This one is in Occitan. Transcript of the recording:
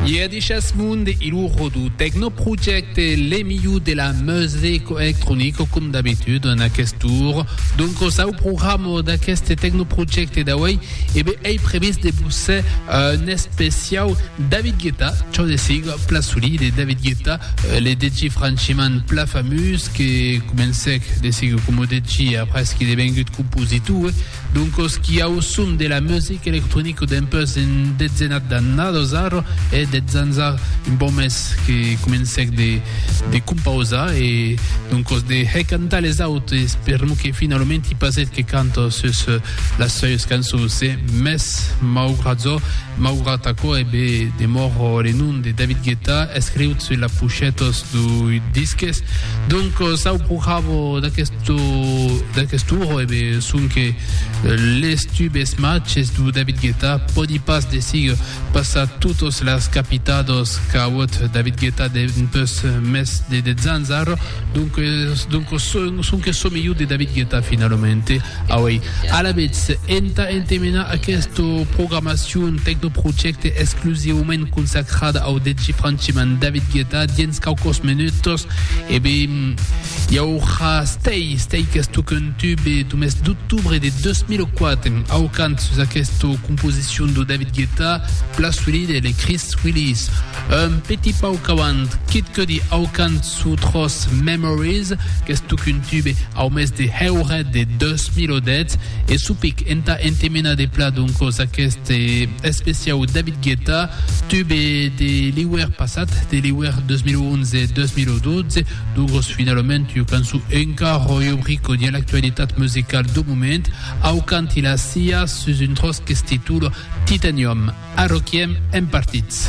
Ier dichas mond e lo rodu Tecno Project e le miu de la musico electronico com d'habitud en aquest tour. Donc o sau programa d'aqueste Tecno Project d'avui e bé ei previst de busser un especiau David Guetta, ciò de siga pla solid de David Guetta, euh, le deji franchiment pla famous que comencèc de siga com o deji après qu'il est vengut compositor, Doncos qui au som de la music electronic dempuèus un detzenat d'annadas ara, hè, dètz ans ara, un pauc mès, que comencèc de de compausar e doncos de hè cantar les autes per mo que finalament i pas eth que canta sus las seues cançons, hè, mès maugrat çò, maugrat aquò, hè be de mòr le nom de David Guetta escriut sus la pochètos dui disques, doncos au progravo d'aquest. Lo d'aqueste oro, e ben, sonque les tubes matges du David Guetta pòdi pas desig passar totos las capitados qu'auot David Guetta dempeus mès de 10 ans ara, donques, donques sonque çò melhor de David Guetta finalament, auei. Alavetz, entà entemenar aquesta programacion Tecnoprojecte exclusivament consacrada au djfrancheman David Guetta, dins quauquos menutos, e ben, Jauja stei, stei qu'esto contube lo mes d'octubre de 2004, aucant sus aquesta composicion de David Guetta, Plas Willie de les Chris Willies. Un petit pauc avant, Kid Cudi aucant su tros Memories, qu'esto contube au mes de heuret de 2010, e su pic entà entemenar de pla doncos aquest especiau David Guetta, tube de l'hiuèr passat, de l'hiuèr 2011-2012, Dugos finalament ua cançon enca ròio brico dia l'actualitat musicala dau moment, au canti la cia sus un tròç que s'titula Titanium. Arroquiem en partits.